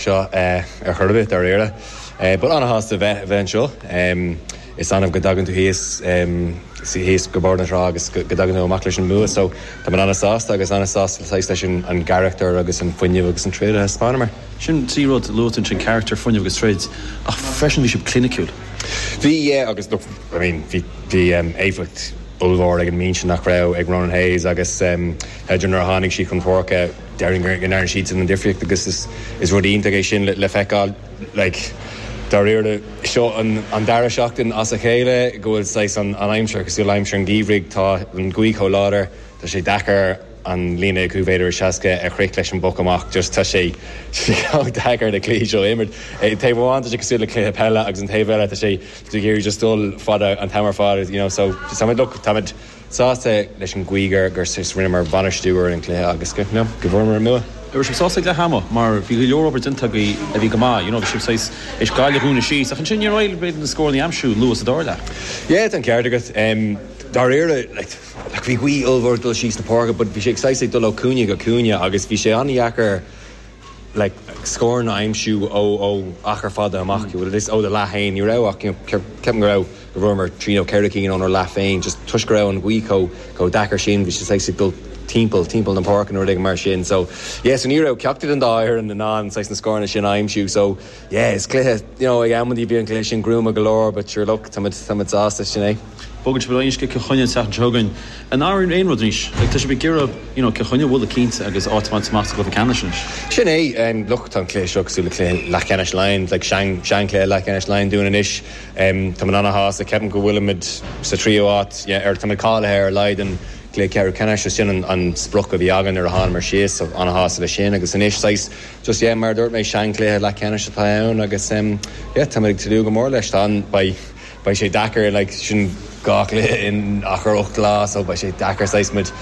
seo ar chor ar bith, dáiríre. But ana-shásta a bheith anseo. Is annamh go dtagann tú thíos, thíos go Bóthar na Trá agus go dtagann tú amach leis an mbua so tá mé ana-sásta agus ana-sásta saghas leis an gcarachtar agus an fuinneamh agus an troid a thaispeánamar. Sin trí rud, luadh ansin carachtar, fuinneamh agus troid ach freisin bhí sibh cliniciúil. Bhí, yeah, agus look, I mean, bhí, bhí éifeacht ollmhór ag an mbinse nach raibh ag Ronan Hayes agus Hedgo nuair a tháinig siad chun páirce, déarfainn go ndearna siadsan an difríocht agus is rud iontach é sin le feiceáil. Like, dáiríre, seo an dara seachtain as a chéile go bhfuil saghas an aimsir cosúil le haimsir an gheimhridh, tá an ghaoth chomh láidir, tá sé deacair an líne chúig mhéadar is seasca a shroich leis an bpoc amach, just tá sé chomh deacair na cluichí seo a imirt. Taobh amháin tá sé cosúil le cluiche peile agus an taobh eile tá sé ag iarraidh just dul fada an t-am ar fad, you know, so táimid, look, táimid. sásta leis an gcaoi gur rinneamar bainistiú ar an gcluiche agus go bhfuaireamar an bua. raibh sibh sásta ag leath ama mar bhí go leor obair déanta agaibh a bhí go maith, you know bhí sibh saghas, th'éis Gaillimh a dhúnadh síos ach ansin níor éirigh libh na scóranna a aimsiú luath sa dara leath. Yeah, tá an ceart agat. Dáiríre, like, bhí gaoth ollmhór ag dul síos na páirce but bhí sé ag saghas ag dul ó chúinne go cúinne agus bhí sé an-dheacair, like scóranna a aimsiú ó ó achar fada amach you know this ó do leath féin ní raibh ach you know ceap ceapaim go raibh go bhfuaireamar trí nó ceithre cinn ónár leath féin just toisc go raibh an ghaoth chomh chomh deacair sin bhí sé saghas ag dul timpeall timpeall na páirce nó rud éigin mar sin so yeah so ní raibh ceachtar den dá fhoireann in ann saghas na scóranna sin a aimsiú so Yeah is cluiche you know admhaím bhí an cluiche sin gruama go leor but sure look táimid táimid sásta sin é. Bogann sibh ar aghaidh Cill Chainnigh an tseachtain seo chugainn ní athraíonn aon rud anois like tá sibh ag iarraidh you know Cill Chainnigh a bhualadh cinnte agus áit a bhaint amach sa gcluiche ceannais anois. Sin é em look tá an cluiche seo cosúil le cluiche leathcheannais Laighean like sean sean cluiche leathcheannais Laighean dúinn anois em táimid ana shásta ceapaim go bhfuilimid sa tríú háit yeah ar táimid cáilithe ar a laghad don cluiche ceathrú ceannais so sin an an sprioc a bhí againn nuair a thánamar síos so ana shásta le sin agus anois saghas Just, yeah, mar a dúirt mé, seanchluiche leathcheannais atá ann agus, em, yeah, táimid ag tnúth go mór leis. Tá an, beidh, beidh sé deacair, like, sin dhá chluiche in achar ocht lá so beidh sé deacair saghas muid,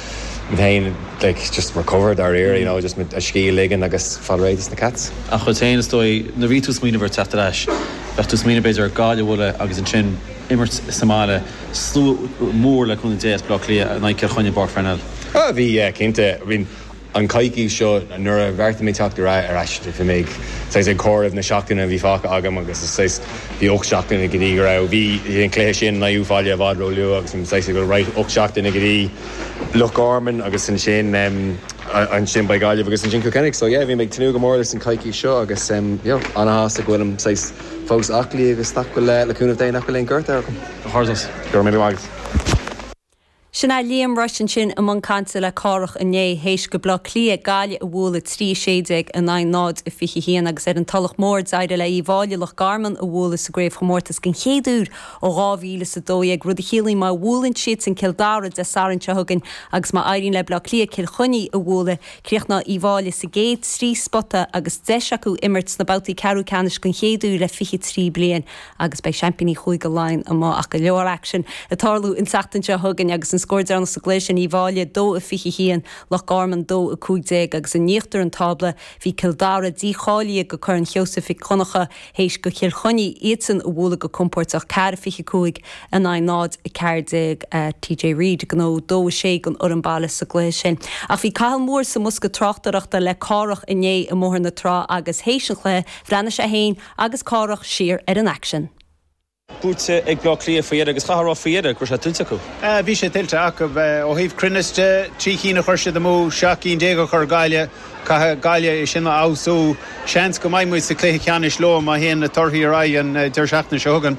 muid féin, like, just recover dáiríre, you know, just muid a scíth a ligean agus fáil réidh dos na Cats. Ach chugat féin, is dóigh, nuair a bhí tú ag smaoineamh ar theacht ar ais, bheadh tú ag smaoineamh, b'fhéidir, ar Gaillimh a bhualadh agus ansin imirt sa mbaile, slua mór le cúnamh Dé as Baile Átha Cliath in aghaidh Cill Chainnigh i bPáirc Pharnell. Ah, bhí, yeah, cinnte. I mean. An coicís seo, nuair a bheartaigh mé teacht ar ais, bhí mé ag, saghas, ag comhaireamh na seachtaine a bhí fágtha agam agus is, saghas, bhí ocht seachtaine go dtí go raibh, bhí, bhí an cluiche sin in Uíbh Fhailí i bhfad ró-luath agus bhí mé, saghas, ag dul, right, ocht seachtaine go dtí Loch Garman agus ansin, ansin beidh Gaillimh agus ansin Cill Chainnigh. So, yeah, bhí mé ag tnúth go mór leis an coicís seo agus, you know, ana-shásta go bhfuilim, saghas, fós aclaí agus nach bhfuil, le cúnamh Dé, nach bhfuil aon ghortú orm. Go raibh míle maith agat. Sin é Liam Rushe ansin i mbun cainte le Cárthach inné théis go Bleá Cliath Gaillimh a bhualadh 3:16 in aghaidh 0 a 21 agus ar an Tulach Mór d'éirigh le Uíbh Fháilí Loch Garman a bhualadh sa gcraobhchomórtas den chéad uair ó 2012 rud a chiallaíonn má bhuaileann siadsan Cill Dara Dé Sathairn seo chugainn agus má éiríonn le Bleá Cliath Cill Chainnigh a bhualadh críochnóidh Uíbh Fháilí sa gcéad trí spota agus deis acu imirt sna babhtaí ceathrú ceannais den chéad uair le 23 bliain. agus beidh seaimpíní Chúige Laighean amuigh ach go leor aicsin ag tarlú an tseachtain seo chugainn agus an scór deireanach sa gcluiche sin Uíbh Fháilí 2-21 Loch Garman 2-15 agus in íochtar an tábla bhí Cill Dara dícháilithe go Corn Sheosaimh Mhic Dhonncha théis go Cill Chainnigh iadsan a bhualadh go compóirteach 4-25 in aghaidh 0-14 TJ Reid ag gnóthú 2-6 don fhoireann baile sa gcluiche sin ach bhí Cathal Moore sa mbosca tráchtaireachta le Cárthach inné i mBóthar na Trá agus théis an chluiche bhreathnaigh sé féin agus Cárthach siar ar an aicsean. buaite ag Bleá Cliath faoi dheireadh agus chaithfeá a rá faoi dheireadh go raibh sé tuillte acu. Bhí sé tuillte acu ó thaobh cruinneas de. Trí cinn a chuir siad amú, seacht gcinn déag a chuir Gaillimh. Caithfidh Gaillimh é sin a fheabhsú. Seans go mbeidh muid sa chluiche ceannais leo má théann na torthaí ar aghaidh an deireadh seachtaine seo chugainn.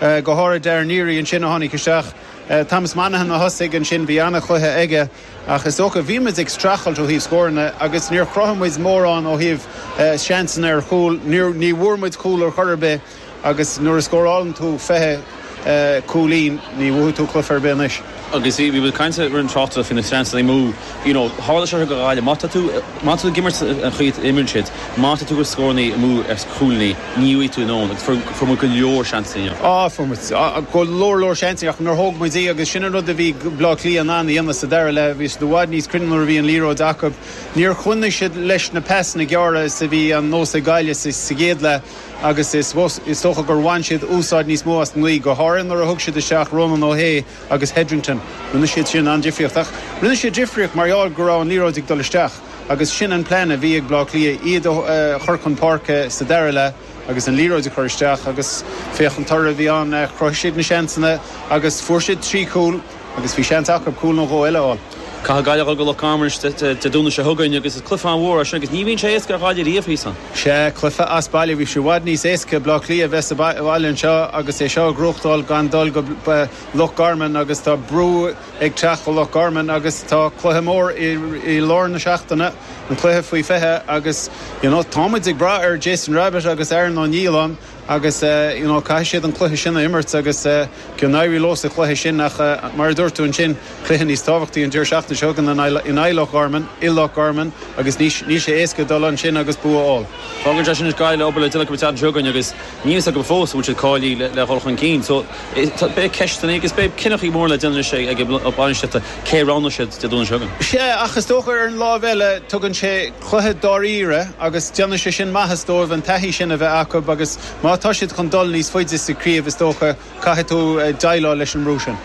go háirid Darragh Neary ansin a tháinig isteach, Thomas Monaghan a thosaigh ansin, bhí an-chluiche aige ach is dócha, bhí muid ag streachailt ó thaobh scóranna agus níor chruthaigh muid mórán ó thaobh seansanna ar chúl, ní bhfuair muid cúl ar chor ar bith agus nuair a scórálann tú fiche cúilín, ní bhuafaidh tú cluiche ar bith anois. Agus bhí bhí caint ar an tráchtaireacht faoi na seansanna amú, you know, tharla seo go Ghaillimh, má tá tú, má tá tú ag imirt an chaoi a imríonn siad, má tá tú ag scórannaí amú ar chúilíní, ní bhfaighidh tú in ann, agus fuair, fuair muid go leor seansanna inniu. Á, fuair muid, á, go leor leor seansanna ach níor thóg muid iad agus sin an rud a bhí Bleá Cliath in ann a dhéanamh sa dara leath, bhí siad i bhfad níos cruinne nuair a bhí an liathróid acub, níor choinnigh siad leis na pasanna gearra is a bhí an nós ag Gaillimh sa, sa gcéad leath. agus is dócha gur bhain siad úsáid níos mó as an ngaoth, go háirithe nuair a thug siad isteach Rónán Ó hAodha agus Hetherton. Rinne siad sin an-difríocht, ach rinne siad difríocht mar gheall go raibh an liathróid ag dul isteach agus sin an plean a bhí ag Bleá Cliath, iad a chur chun páirce sa dara leath agus an liathróid a chur isteach agus féach an toradh a bhí ann, chruthaigh siad na seansanna agus fuair siad trí chúl. agus bhí seans acu cúl nó dhó eile a fháil. Caithfidh Gaillimh a dhul go Loch Garman anois Dé Domhnaigh seo chugainn agus is cluiche an-mhór é sin agus ní bhíonn sé éasca ar Ghaillimh riamh thíos ann. Sea, cluiche as baile, bhí sé i bhfad níos éasca ag Bleá Cliath a bheith sa bhaile anseo agus é seo a ghnóthachtáil gan dul go Loch Garman agus tá brú ag teacht go Loch Garman agus tá cluiche mór i lár na seachtaine, an cluiche faoi 20 agus, you know, tá muid ag brath ar Jason Rabbitte agus Aaron Niland. agus you know caithfidh siad an cluiche sin a imirt agus go n-éirí leo sa chluiche sin ach mar a dúirt tú ansin cluiche níos tábhachtaí an deireadh seachtaine seo chugainn in aghaidh Loch Garman i Loch Garman agus níl sé éasca dul ansin agus bua a fháil. Fágann sé sin anois Gaillimh ag obair le Donncha an tseachtain seo chugainn agus níl fhios agam fós an bhfuil siad cáilithe le dhul chun cinn so beidh ceisteanna agus beidh cinneachaí móra le déanamh anois ag lucht bainistíochta cé a roghnóidh siad Dé Domhnaigh seo chugainn. Sea ach is dócha ar an láimh eile tugann sé chluiche dáiríre agus déanfaidh sé sin maitheas dóibh an taithí sin a bheith acu agus má tá siad chun dul níos faide sa chraobh is dócha caithfidh tú deighleáil leis an mbrú sin.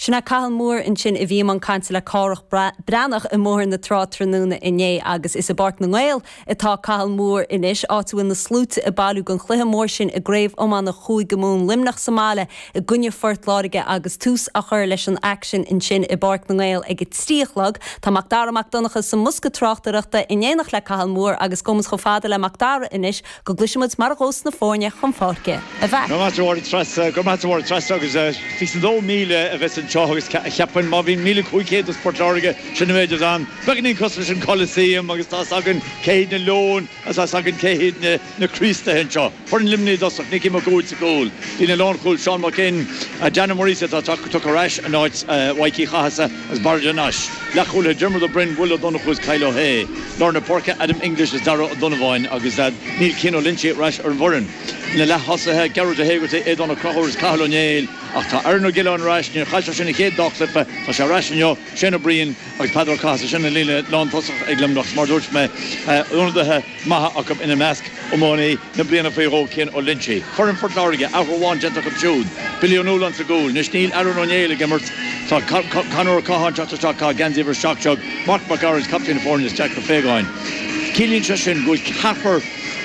Sin é Cathal Moore ansin a bhí i mbun cainte le Cárthach Breathnach i mBóthar na Trá tráthnóna inné agus is i bPáirc na nGael atá Cathal Moore anois, áit a bhfuil na sluaite ag bailiú don chluiche mór sin i gCraobh Iomána Chúige Mumhan, Luimneach sa mbaile i gcoinne Phort Láirge agus tús á chur leis an aicsean ansin i bPáirc na nGael ag a trí a chlog. Tá Macdara Mac Donncha sa mbosca tráchtaireachta in éineacht le Cathal Moore agus gabhfaidh muid chomh fada le Macdara anois go gcloisfidh muid mar a ghabhfas na foirne chun páirce. A Mhac! Go raibh maith agat a Threasa agus 22000 a bheas anseo agus cheapfainn má bhíonn 1500 as Port Láirge, sin an méid atá ann. Beagáinín cosúil leis an Coliseum agus tá's againn cé hiad na Leoin! Is tá's againn cé hiad na Críostaithe anseo. Foireann Luimní i dtosach, Nicky Mac Uaid sa gcúl, líne lánchúil, Seán Mac Fhinn, Dan Ó Muirgheasa atá tugtha ar ais in áit Mhaidhc Uí Chathasaigh agus Barra de Nais, leathchúlaithe, Diarmuid Ó Broin, Will Ó Donnchú agus Kyle Ó hAodha, lár na páirce, Adam English agus Darragh Ó Donnabháin agus níl Cian Ó Loinsigh ar ais ar an bhfoireann. Na leath-thosaithe, Gearóid Ó hÉigeartaigh, Aodán Ó Conchúir agus Cathal Ó Néill, ach tá Aaron Ó Giolláin ar ais, níor chaillteach sé an chéad dá chluiche, tá sé ar ais inniu, Shane Ó Briain agus Peadar Ó Cathasaigh, sin an líne lántosach ag Luimneach, mar a dúirt mé, ionadaithe maithe acu ina measc, iománaí na bliana faoi dhó Cian Ó Loinsigh. Foireann Phort Láirge, athrú amháin déanta acu siúd, Billy Ó Nualláin sa gcúl, anois níl Aaron Ó Néill ag imirt, tá Conor Ó Catháin ag teacht isteach, tá a gheansaí uimhir 7 déag, Marc Mac Gearailt, captaen na foirne, is Jack Ó Faogáin. Ciallaíonn sé sin go bhfuil ceathrar,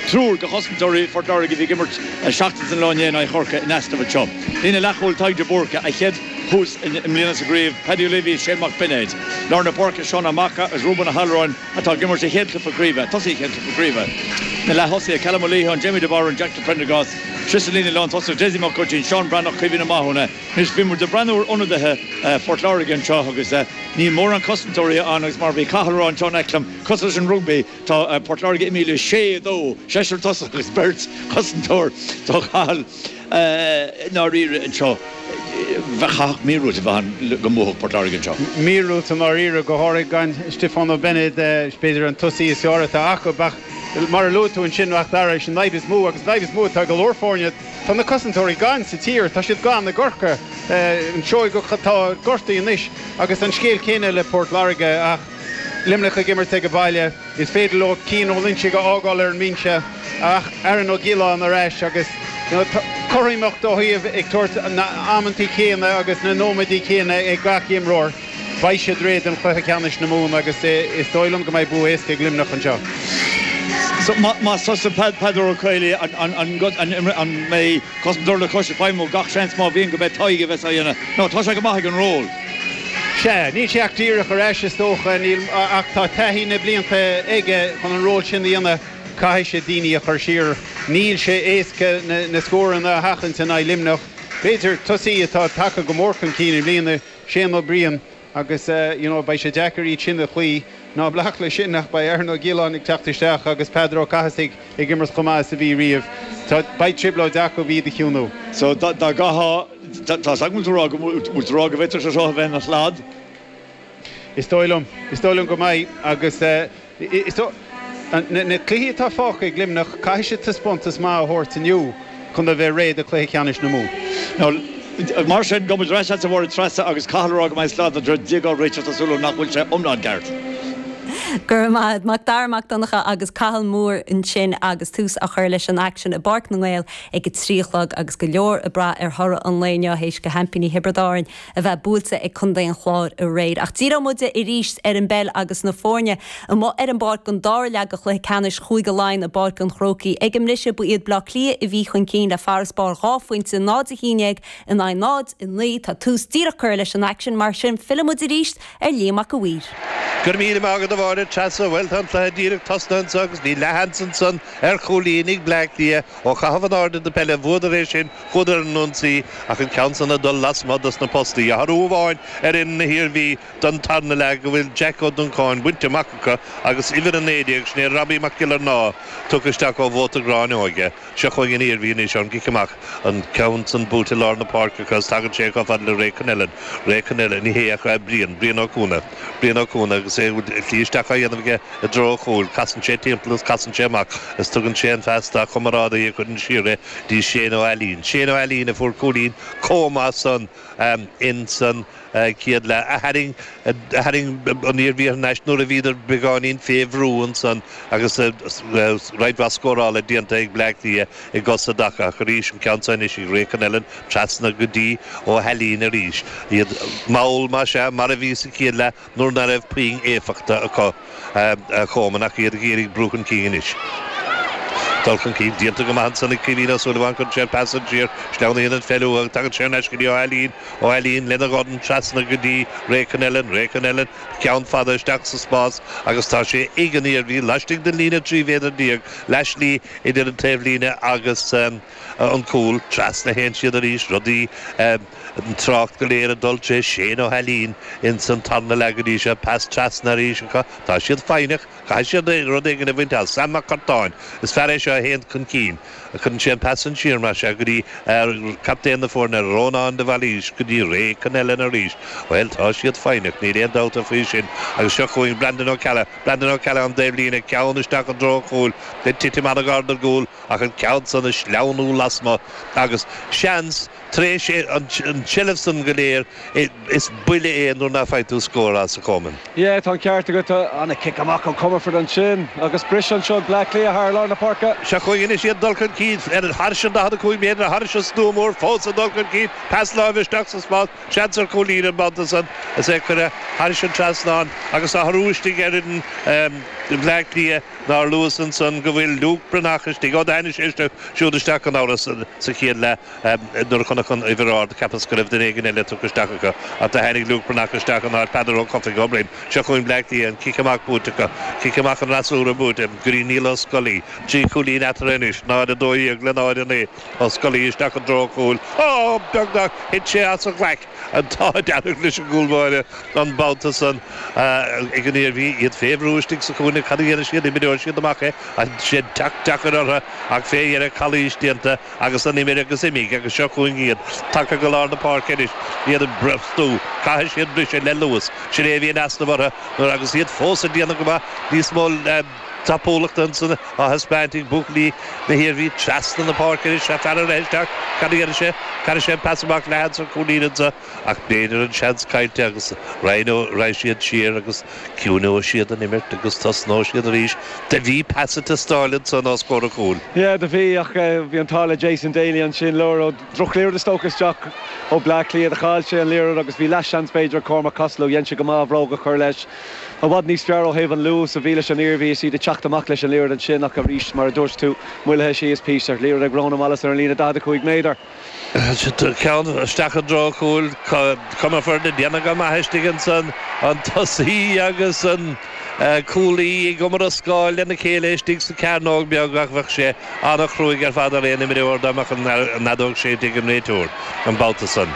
triúr de chosantóirí Phort Láirge a bhí ag imirt seachtain is an lá inné in aghaidh Chorcaigh in easnamh anseo. Líne leathchúil, Tadhg De Búrca, a chéad tús i mbliana sa gcraobh, Paddy Leavey, Shane Mac Beinéid, lár na páirce, Seán Ó Macha agus Reuben Ó hAllmhuráin atá ag imirt sa chéad chluiche craoibhe, tosaithe chéad chluiche craoibhe, na leath-thosaithe, Callum Ó Liatháin, Jamie de Barún, Jack de Priondargás, tré sa líne lántosaigh, Dessie Mac Úistín, Seán Breathnach, Caoimhín Ó Mathúna. Anois bhí muid ag breathnú ar ionadaithe Phort Láirge anseo agus níl mórán cosantóirí ann agus mar a bhí Cathal a rá an tseán aici liom, cosúil leis an rugbaí, tá Port Láirge imithe le sé, a dó, seisear tosach agus beirt cosantóir. Tá Cathal. ndáiríre anseo, chaithfeadh míorúilt a bheith ann go mbuafadh Port Láirge anseo. míorúilt i ndáiríre, go háirithe gan Stiofán Ó Beinéid, is b'fhéidir an tosaí is fearr atá acu, ach mar a luaigh tú ansin, ach arís an fhadhb is mó agus an fhadhb is mó atá ag go leor foirne, tá na cosantóirí gann sa tír, tá siad gann i gCorcaigh, an Seoigheach atá gortaithe anois agus an scéal céanna le Port Láirge ach Luimneach ag imirt ag baile. Is féidir leo Cian Ó Loinsigh a fhágáil ar an mbinse ach Aaron Ó Giolláin ar ais agus cothromaíocht ó thaobh ag tabhairt na n-amantaí céanna agus na nóiméadaí céanna ag gach imreoir. Beidh siad réidh don chluiche ceannais na Mumhan agus is dóigh liom go mbeidh bua éasca ag Luimneach anseo. Más tusa Peadar Ó Caollaí, an mbeidh cosantóir le cois ag feidhmiú? Gach seans má bhíonn go mbeidh Tadhg a bheas á dhéanamh nó tá sé go maith ag an ról. Sea, níl sé ach díreach ar ais, is dócha, níl, ach tá taithí na blianta aige chun an ról sin a dhéanamh. Caithfidh sé daoine a chur siar. Níl sé éasca na scóranna a sheachaint in aghaidh Luimneach. B'fhéidir, tosaí atá tagtha go mór chun cinn i mbliana, Shane Ó Briain, agus, you know, beidh sé deacair iad sin a chloí. Ná bac leis sin ach beidh Aaron Ó Giolláin ag teacht isteach agus Peadar Ó Cathasaigh ag imirt chomh maith is a bhí riamh. Tá, beidh trioblóid acu iad a chiúnú. So, dá gcaithfeá. Tá's agam go bhfuil tú go bhfuil tú ag rá go bhféadfadh sé seo a bheith ina shlad. Is dóigh liom, is dóigh liom go mbeidh agus is dóigh, na cluichí atá fágtha ag Luimneach, caithfidh siad taispeántas maith a thabhairt inniu chun a bheith réidh do chluiche ceannais na Mumhan. Mar sin, gabhaimid ar ais agatsa a Mháire Treasa agus Cathal ag rá go mbeidh slad na dtréad déag á réiteach tá súil agam nach bhfuil sé iomlán ceart. Go raibh maith a'd Macdara Mac Donncha agus Cathal Moore ansin agus tús á chur leis an aicsean i bPáirc na nGael ag a trí a chlog agus go leor ag brath ar thoradh an lae inniu théis do sheaimpíní Thiobraid Árann a bheith buailte ag contae an Chláir aréir. Ach díreoidh muid arís ar an bpeil agus na foirne amuigh ar an bpáirc don dara leath de chluiche ceannais Chúige Laighean i bPáirc an Chrócaigh ag an mbriseadh. Ba iad Baile Átha Cliath a bhí chun cinn le farasbarr dhá phointe, 0-11 in aghaidh 0-9. Tá tús díreach curtha leis an aicsean, mar sin fillfidh muid arís ar. ar Liam Mac a' Mhaoir. Go raibh míle maith agat a Mháire Treasa, bhuel tá an cluiche díreach tosnaithe anseo agus bhí leathsheans ansan ar chúilín ag Bleá Cliath, ó chaitheamh in airde na peile a bhuadar é sin, chuadar ar an ionsaí ach an ceann san ag dul lasmuigh dos na postaí, athrú amháin ar fhoireann na hIarmhí don tarna leath go bhfuil Jeaic Ó Duncáin bainte amach acu agus uimhir a naoi déag, sin é Robbie Mac Giollarnáth, tugtha isteach ó Mhóta Ghráinne Óige. Seo chugainn an Iarmhí anois ón gcic amach, an ceann san buailte i lár na páirce acu is tagann sé chomh fada le Ray Connellan. Ray Connellan, ní hé ach a, Brian, Brian Ó Cuana. Brian Ó Cuana agus é a shlí isteach á dhéanamh aige i dtreo an chúil, casann sé timpeall is casann sé amach is tugann sé an phas dá chomrádaí a chuireann siar é dtí Shane Ó hAilín. Shane Ó hAilín a fuair cúilín chomh maith san insan. Chéad leath a tharraing tharraing an Iarmhí thar n-ais nuair a bhíodar beagáinín fé bhrú ansan agus roinnt mhaith scórála déanta ag Bleá Cliath i gcosa dá chaith arís an ceann seo anois ag Ray Connellan trasna go dtí Ó hAilín arís iad mall más ea mar a bhí sa chéad leath nuair ná raibh puinn éifeachta acu. Choman ach iad ag iarraidh brú chun cinn anois. Dul chun cinn déanta go maith ansan ag Caoimhín Ó Súilleabháin, cuireann sé an pas san siar, sleamhnaíonn an pheil uathu ach tagann sé thar n-ais go dtí Ó hAilín, Ó hAilín lena dhorn trasna go dtí Ray Connellan, Ray Connellan ceann fada isteach sa spás agus tá sé ag an Iarmhí laistigh den líne 13 mhéadar, leath slí idir an taobhlíne agus an. an cúl, trasna théann siad arís, rudaí, an trácht go léir ag dul tré Shane Ó hAilín ins an tarna leath go dtí seo, pas trasna arís acu, tá siad foighneach, caithfidh siad rud éigin a bhaint as, Sam Mac Cartáin, is fear é seo a théann chun cinn, cuireann sé an pas san siar mar seo go dtí captaen na foirne Rónán de Bhailís go dtí Ray Connellan arís, bhuel tá siad foighneach, níl aon dabht faoi sin agus seo chugainn Brandon Ó Ceallaigh, Brandon Ó Ceallaigh ón dtaobhlíne, ceann isteach i dtreo an chúil, ag titim an-ghar don gcúl, ach an ceann san ag sleamhnú lasmuigh agus, seans, tar éis an tseilbh san go léir, is buille é nuair nach bhfaigheann tú scór as a Choman. Yeah, tá an ceart agat. An cic amach ó Comerford ansin agus bris anseo ag Bleá Cliath thar lár na páirce. Seo chugainn anois iad, dul chun cinn thairis an 45 méadar, thairis an stua mór fós ag dul chun cinn, pas láimhe isteach sa spás, seans ar chúilín an babhta san is é curtha thairis an trasnán agus athrú istigh ar fhoireann Bhleá Cliath. Nár luas ansan go bhfuil Luke Breathnach istigh? Ó tháinig sé siúd isteach gan amhras sa chéad leath nuair a chonac an uimhir ard, cheapas go raibh duine éigin eile tugtha isteach acu, ach do tháinig Luke Breathnach isteach in áit Peadar Ó Cofaigh Ó Broin. Seo chugainn Bleá Cliath, an cic amach buaite acu, cic amach an fhreasúra buaite, go dtí Niall Ó Scolaí, trí chúilín eatarthu anois, 0-12 le 0-9, Ó Scolaí isteach i dtreo chúil, ááá! beagnach, thit sé as a ghlaic! An t-ádh dearg leis an gcúl báire an babhta san ag an Iarmhí, iad fé bhrú istigh sa chúinne. Cad a dhéanfaidh siad? Imreoidh siad amach é. Tá sé deacair orthu ach fé dheireadh calaois déanta agus an imir agus imigh agus seo chugainn iad tagtha go lár na páirce anois, iad ag brostú. Caithfidh siad briseadh le luas. Sin é a bhí in easnamh orthu nuair agus iad fós ag déanamh go maith níos mó. tapúlacht ansan á thaispeáint ag buachaillí na hIarmhí trasna na páirce anois ag faire isteach, cad a dhéanfaidh sé? Caithfidh sé an pas amach leathan sa chúinne ansan ach b'fhéidir an seans caillte agus raghaidh siad siar agus ciúineoidh siad an imirt agus tosnóidh siad arís. Do bhí pas ag teastáil ansan os comhair an chúil. Yeah, do bhí ach bhí an t-ádh le Jason Daly ansin, mar drochliathróid a tugadh isteach ó Bleá Cliath, chaill sé an liathróid agus bhí leathsheans b'fhéidir ag Cormac Costello, dhein sé go maith a bhróg a chur leis. I bhfad níos fearr ó thaobh an luais a bhí leis an Iarmhí is iad ag teacht amach leis an liathróid ansin ach arís, mar a dúirt tú, moillithe síos píosa. Liathróid ag Rónán Wallace ar an líne 45 méadar. Ceann isteach i dtreo chúil Comerford ag déanamh go maith istigh ansan, an tosaí agus an cúlaí ag iomrascáil lena chéile istigh sa chearnóg beag ach bheadh sé an-chruaidh ar fad ar aon imreoir dá mbeadh an fheadóg séidte ag an réiteoir an babhta san.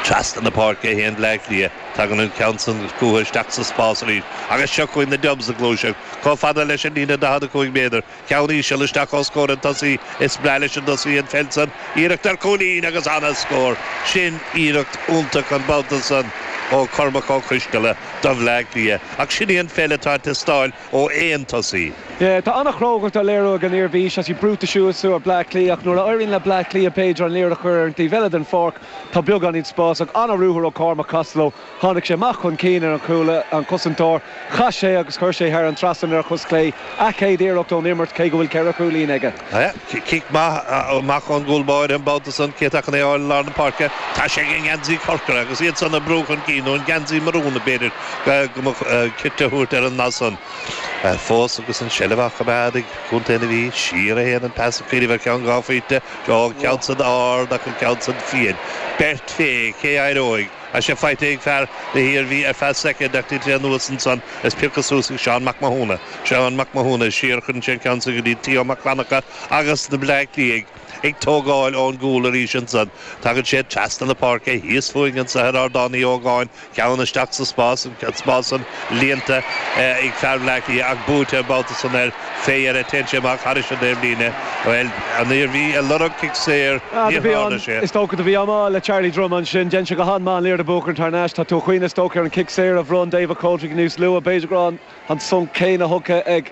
Trasna na páirce a théann Bleá Cliath. Tagann an ceann san chútha isteach sa spás arís agus seo chugainn na Dubs ag gluaiseacht chomh fada leis an líne 45 méadar, ceann íseal isteach os comhair an tosaí. Is breá leis an dtosaí an pheil san, iarracht ar chúilín agus an-scór. Sin iarracht iontach an babhta san ó Chormac Ó Coistealla do Bhleá Cliath ach sin í an pheil atá ag teastáil ó aon tosaí. Tá an-chrógacht á léiriú ag an Iarmhí, tá siad brúite suas ar Bleá Cliath ach nuair a éiríonn le Bleá Cliath b'fhéidir an liathróid a chur ar an taobh eile den pháirc, Tá beagáinín spás ach an-ruathar ó Cormac Costello. Tháinig sé amach chun cinn ar an chúl, an cosantóir, chas sé agus chuir sé thar an trasnan ar a chos chlé. A chéad iarracht ón imirt, cé go bhfuil ceithre chúilín aige. Cic maith amach ón gcúl báire an babhta san, cé atá chun é a fháil i lár na páirce? Tá sé ag an ngeansaí corcra agus iad san ag brú chun cinn, nó an geansaí marún, b'fhéidir go mba chirte a thabhairt ar an ndath san. Fós agus an tseilbh á choimeád ag Contae na hIarmhí, siar a théann an pas, ag cuimhneamh ar cheann dhá phointe, Ó, an ceann san ard ach an ceann san fiáin. Beirt fé cé éireoidh. Tá sé faighte ag fear na hIarmhí ar feadh soicind ach do thit sé anuas ansan is pioctha suas ag Seán Mac Mathúna. Seán Mac Mathúna, siar a chuireann sé an ceann san go dtí Theo Mac Fhlannchadha agus na Bleá Cliathaigh ag tógáil ón gcúl arís ansan. Tagann sé trasna na páirce thíos fúinn anso ar Ardán Uí Ógáin. Ceann isteach sa spás, an spás san líonta ag fear Bhleá Cliath ach buailte an babhta san ar Faye air a téann sé amach thairis an taobhlíne. Bhuel, an Iarmhí ag lorg cic saor, níor tharla sé. Is dócha do bhí mí-ádh le Charlie Drumm ansin. Dhein sé go han-maith an liathróid a bhuachan thar n-ais. Tá tú ag cuimhneamh is dócha ar an cic saor a bhronn David Coldrick níos luaithe. B'fhéidir go raibh an. an sonc céanna thugtha ag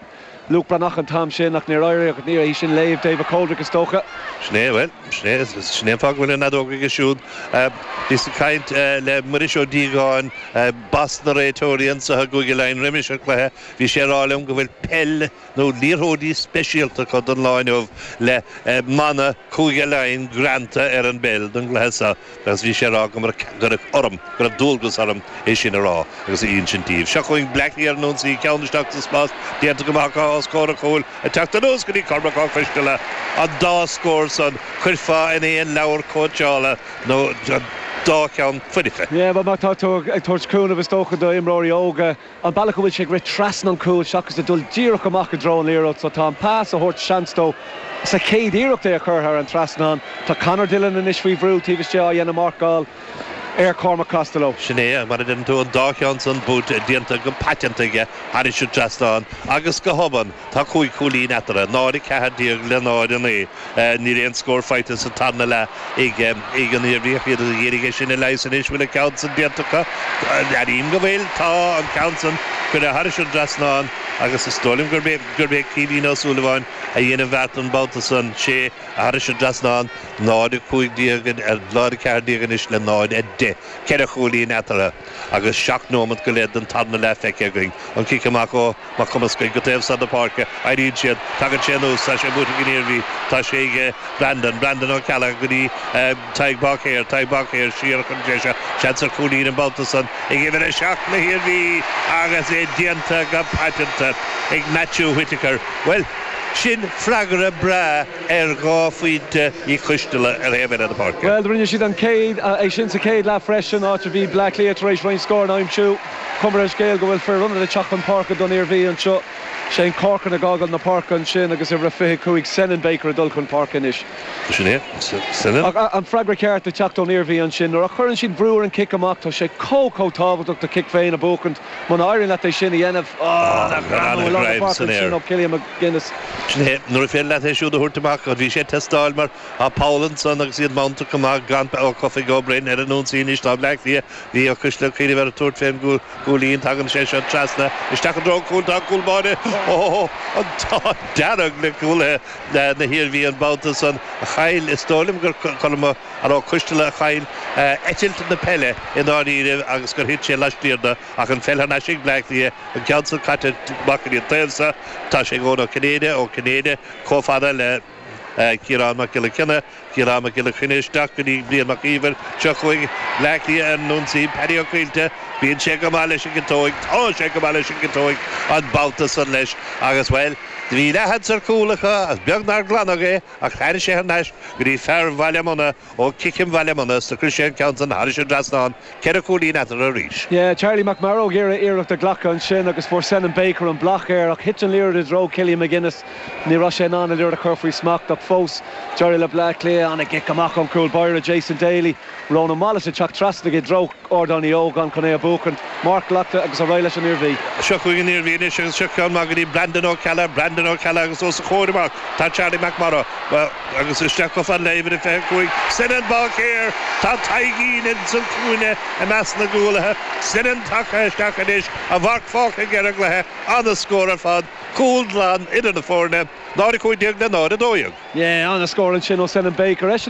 Luke Breathnach an t-am sin, ach níor éirigh ach níorbh é sin léamh David Coldrick, is dócha. Sin é, bhuel, sin é. Sin é an fáth go bhfuil an fheadóg aige siúd. Bhíos ag caint le Muiris Ó Díogáin, boss na réiteoirí anseo i gCúige Laighean roimis an chluiche, bhí sé ag rá liom go bhfuil peil nó liathróidí speisialta acu don lá inniu le mana Chúige Laighean greanta ar an bpeil don gcluiche seo. Agus bhí sé ag rá go raibh orm, go raibh dualgas orm é sin a rá agus a insint daoibh. Seo chugainn Bleá Cliath ar an ionsaí, ceann isteach sa spás, déanta go maith acu os comhair an chúil, ag teacht anuas go dtí Cormac Ó Coisteala. An dá scór san, chuirfeá in aon leabhar cóitseála nó an dá cheann foirfe. Go háirithe má tá tú ag tabhairt cúnaimh is dócha do imreoirí óga. an bealach a bhfuil sé ag rith trasna an chúil seachas a dhul díreach amach i dtreo an liathróid so tá an pas ag tabhairt seans dó sa chéad iarracht é a chur thar an trasnán. Tá Conor Dillon anois faoi bhrú taobh istigh ag déanamh marcáil ar Chormac Costello. Sin é mar a Tá cúig chúilín eatarthu, 0:14 le 0:09. Níl aon scór faighte sa tarna leath ag an Iarmhí ach iad ag iarraidh é sin a leigheas anois. Bhfuil an ceann san déanta acu? Airím go bhfuil. Tá an ceann san curtha thairis an dtrasnán agus is dóigh liom gurb é Caoimhín Ó Súilleabháin a dhein an bheart an babhta san, sé thairis an dtrasnán. 0:15, á, 0:14 anois le 0:10. Ceithre chúilín eatarthu agus seacht nóimeat go leith den tarna leath feicthe againn. An cic amach ó. Mac Cumascaigh go taobh san na páirce, éiríonn siad, tagann sé anuas, tá sé amuigh ag an Iarmhí, tá sé ag Brandon, Brandon Ó Ceallaigh go dtí Tadhg Báicéir, Tadhg Báicéir siar chun deise, seans ar chúilín an babhta san ag uimhir a seacht na hIarmhí agus é déanta go paiteanta ag Matthew Whittaker. Bhuel, sin freagra breá ar dhá phointe Uí Choisteala ar thaobh eile na páirce. Bhuel, rinne siad an chéad, é sin sa chéad leath freisin, áit a bhí Baile Átha Cliath tar éis roinnt scór a aimsiú. Cuma ar an scéal go bhfuil fir ionad ag teacht chun páirce don Iarmhí anseo. Shane Corcoran ag fhágáil na páirce ansin agus uimhir a 25 Senan Baker ag dul chun páirce anois. Sin é, Senan. Ach an freagra ceart ag teacht ón Iarmhí ansin. Nuair a chuireann siad brú ar an chic amach, tá sé chomh, chomh tábhachtach do chic féin a bhuachaint muna éiríonn leat é sin a dhéanamh. Ááá, nach greannmhar an greim san aer. Ó Chillian McGuinness. Sin é, nuair a féidir leat é siúd a thabhairt amach. Bhí sé ag teastáil mar tá poll ansan agus iad Mount ag go maith gan Ó Cofaigh, Ó Broin ar an ionsaí anois tá Bleá Cliath. Bhí Ó Coisteala ag cuimhneamh ar thabhairt fén gcúilín, tagann sé seo trasna, isteach i dtreo an chúil, tá an cúl báire, oh, an t-ádh dearg le cúlaithe na hIarmhí an babhta san, a chaill, is dóigh liom gur Cormac Ó Coisteala a chaill eitilt na peile i ndáiríre agus gur thit sé laistiar de ach an pheil thar n-ais ag Bleá Cliath, an ceann san caite amach ar an dtaobh so, tá sé ag Eoin Ó Cinnéide, Ó Cinnéide chomh fada le Ciarán Mac Giolla Chainnigh, Ciarán Mac Giolla Chainnigh isteach go dtí Brian Mac Íomhair seo chugainn. Bleá Cliath ar an ionsaí, Paddy Ó Caoilte, bíonn sé go maith leis an gciotóig, tá sé go maith leis an gciotóig an babhta san leis agus, bhuel, do bhí leathsheans ar chúl acu agus beag nár glanadh é ach tháinig sé thar n-ais go dtí fear Bhaile Munna, ó, Ciceam Bhaile Munna, is cuireann sé an ceann san thairis an dtrasnán. Ceithre chúilín eatarthu arís. Yeah, Charlie McMorrow ag iarraidh iarracht a ghlacadh ansin agus fuair Senan Baker an bloc air ach thit an liathróid i dtreo Killian McGuinness. Ní raibh sé in ann an liathróid a chur faoi smacht ach fós d'éirigh le Bleá Cliath. Ana-chic amach ón gcúl báire, Jason Daly. Ronan Wallace ag teacht trasna aige i dtreo Ardán Uí Ógáin chun é a bhuachaint. Marc glactha agus ar aghaidh leis an Iarmhí. Seo chugainn an Iarmhí anois agus seo ceann maith go dtí Brandon Ó Ceallaigh, Brandon Ó Ceallaigh agus os a chomhair amach tá Charlie McMorrow. Agus isteach chomh fada le uimhir a 25, Senan Báicéir! Tá Taidhgín ins an cúinne i measc na gcúlaithe. Senan tagtha isteach anois, a mharc fágtha aige ar an gcluiche. Ana-scór ar fad. Cúl glan idir na foirne. 0 15 le 0 12. Yeah, ana-scór ansin ó Senan Baker. Eisean a